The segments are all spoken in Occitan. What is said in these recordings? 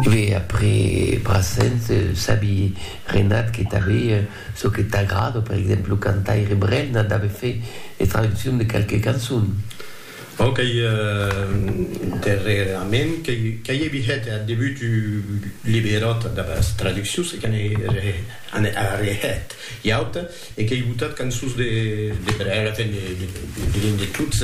Ve après Brassens sabi Renat que tanbe çò que t'agrada, per exemple lo cantaire Brel n'a dave fait de traduccion de qualques cançons. Bon qu'ei darrerament qu'ei evi hèt ath debut un liberòt damb as traduccions e que n'ei arrehèt ua auta. E qu'ei botat cançons de brèla, enfin diguem de tots,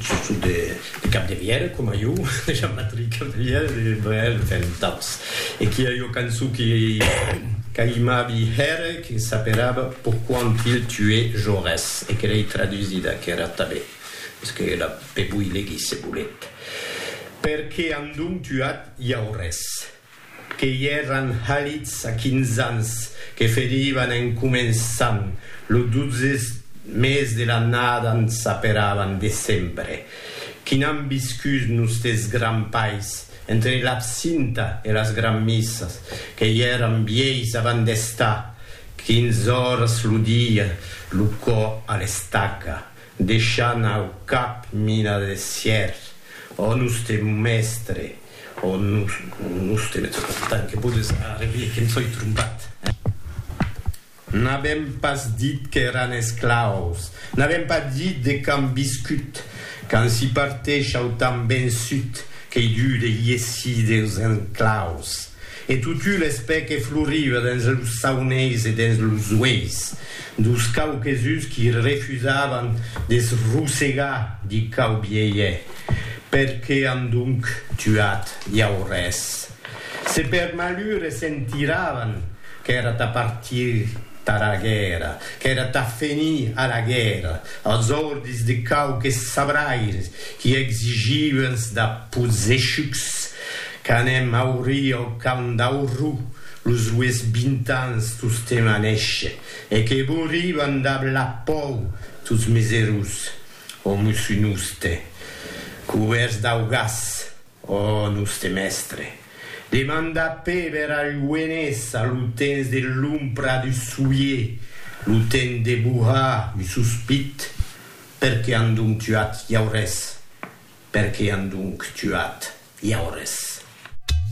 sustot de Capdevièlh, coma jo, de Jean-Patrick Capdevièlh, de Brel, enfin d'autres. E qu'i a ua cançon que qu'aimavi hèr, que s'aperava Pourquoi ont-il tué Jaurès? e que l'ei tradusida aquera tanben, mès que la pe voi legir se volet, Perqué an donc tuat Jaurès? que i èran halits a quinz ans, que ferivan en començant lo dotze mes de l'annada n s'aperavan decembre, qui n'an viscut nustes grands pais, entre l'absinta e las granmissas, que i èran vièis avant d'estar quinz oras lo dia lo cò a l'estaca, Deishant au cap mina de sièr, ò noste mèstre, ò noste mèstre, tant que podes arrevier que em soi trompat, eh? N'avèm pas dit qu'èran esclaus, n'avèm pas dit de quand viscut, quand s'i parteish au temps vençut, qu'ei dur de iessir deus enclaus. E totu l'espè que floriva dens los sauneis e dens los ueis dos quauquesuns qui refusavan de's rosegar di quau bielhet, per que an donc tuat iau res? se per malure se'n tiravan, qu'èra tà partir tara guèrra, qu'èra tà fenir a la guèrra, als ordis de quauques sabraires qui exigivans da pozechucs Qu'anem aurir au Camp d'Aurrú los lues vint ans tostemp a néisher, e que bourivan dab la pòu tots mes erós, ò mossú noste, cubèrts dau gas, ò noste mèstre, demanda Péber a Luenés a lo temps de l'ompra du soulier, lo temps de bohar un sospit, Per qué an donc tuat Jaurès? Per qué an donc tuat Jaurès?